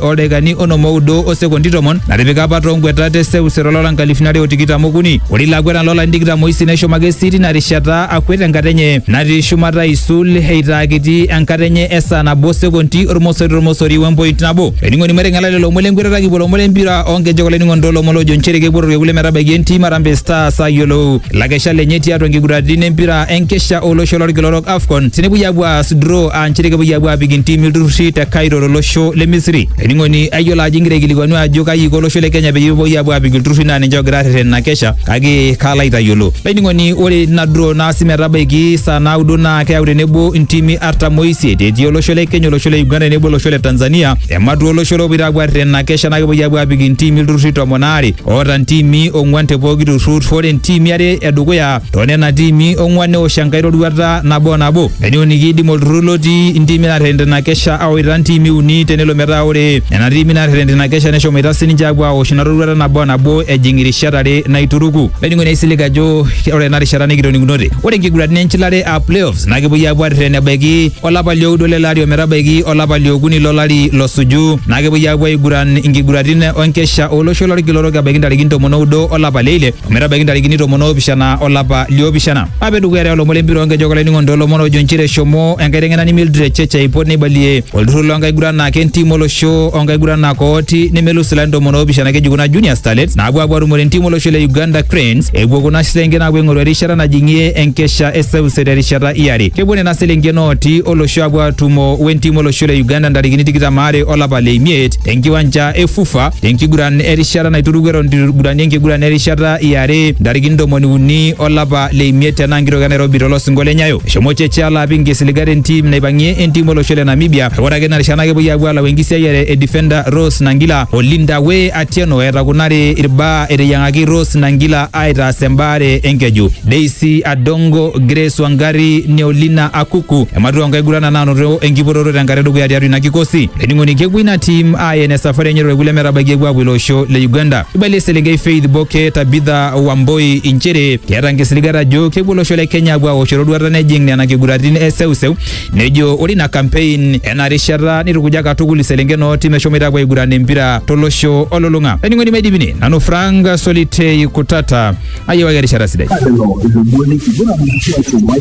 oldakikani onom oudo o sekondi tomon natipika apa too nkweta te seuseu olora nkalifuni are o tikitam okuni. Ore ilo akwetani loo larin tikitam oisiet neshomo ake sii tina rishata akwet enkata enye natii shumata aisul eitaa kiti enkata enye e saa nabo o sekondi ormosori tormosori we mpoint nabo. Olainining'oni maiteng'ela lelo omon lenkwetata kipuo lomon lempira oo nkejek olainining'oni too lomon loojo nchere kepuo ororei kule metabaiki entim Harambee Stars ayiolou ilakeshak lenye tiatua nkiguraritin empira enkesha olosho lorkila orok AFCON tenepuoi apuo aas draw aa nchere kepuoi apuo aapik intimi ilturrurri te Cairo tolosho le Misri. Olainining'oni ayiolo ajo ingira aikilikuanu ajo kaji iko olosho le Kenya peyie epuoi apuo aapik ilturrurri naa ninche oogira aarreten ina kesha kake kaalo aitayiolo. Olainining'oni ore ina draw naasi metabaiki saa naudo naa keyau tenebo intimi artam oisiet etii olosho le Kenya, olosho le Uganda tenebo olosho le Tanzania. Ematua olosho loopoito apuo aarreten ina kesha naa kepuoi apuo aapik intimi ilturrurri tomon aare oota intimi ong'wan te pooki turrur. Ore intimi are e dukuya toonena tiimi ong'uan neosh enkae roruata nabo o nabo neneoniki idim olturrur lotii intiimi naarreten tina kesha awaita ntiimi uni tenelo metaa ore nena tiimi naarreten tina kesha neshomoita sininche apuo aosh ina roruata nabo o nabo ejing irishat are naituruku olainining'oni ai silig ajo ore ena rishata nikitoning'unote ore nkiguraritin enchilare aa playoffs naa kepuoi apuo arreten ebaiki olapa lioudo lele ari ometabaiki olapa liokuni lolari losuju naa kepuoi apuo aiguran inkiguraritin enkesha olosho lorkila orok ebaiki ntarikini tomon oudo olapa leile ometabaiki ntarikini tomon oopishana olapa liopishana ape dukuya te olomon lempira onkejek olainining'oni toolomon ojo nchere eshomo enkaiteng'enani Mildred Cheche aipot neibalie olturrur loonkaguranak entim olosho oonkaguranak ooti nemelus ilarin tomon oopishana keji kuna Junior Starlets naapuo apuo atumore entim olosho le Uganda Cranes epuo kuna selenken apuo aing'oru erishata najing'ie enkesha e seuse terishata iare kepuo nena selenken ooti olosho apuo atumo wentim olosho le Uganda ntarikini tikitam aare olapa le imiet tenkiwanja e FUFA tenkiguran erishata naituruku eton itu igurani enkiguran erishata iare ntarikini ntomoni uni olapa le imiet tena nkitok e Nairobi tolosingo le Nyayo. Eshomo Cheche alo apik nkisiligat entim naipang'ie entim olosho le Namibia. Ore ake ina rishata naa kepuoi aapuo alau enkisiayiare e defender Rose Nangila o Linda Wee Atieno eeta kuna are irbaa eteyiang'aki Rose Nangila aitaas embaare enkeju. Daisy Adongo, Grace Wangari, Neolina Akuku ematua oonkaiguranak naanoto enkipototo tenkata edukuya tiatua ina kikosi. Ening'oni kepuo ina tim aen esafari enye torkule metabaiki epuo apuo ilo osho le Uganda. Eibalie eselenkei Faith Boke Tabitha Wamboi inchere keeta nkisiligat ajo kepuo olosho le Kenya apuo aosh eroruata nejing nena kiguratin e seuseu. Nejo ore ina kampein ena rishata neitukuja katukul iselenken oo tim eshomoita apuo aiguran empira tolosho olulung'a. Ening'oni maidipini nanu Frank Solitei Kutata ayiewaki erishata sidai. Lelo ilomoni kiguran atua shumai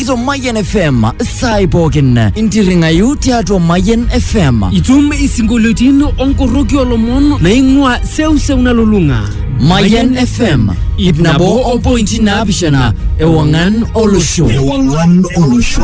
to Mayan FM saai pookin intirring'ayu tiatua Mayan FM. Itum isinkolioitin onkoroki olomon naing'ua seuseu nalulung'a. Mayan FM ip nabo o pointi naapishana ewang'an olosho. Ewang'an olosho.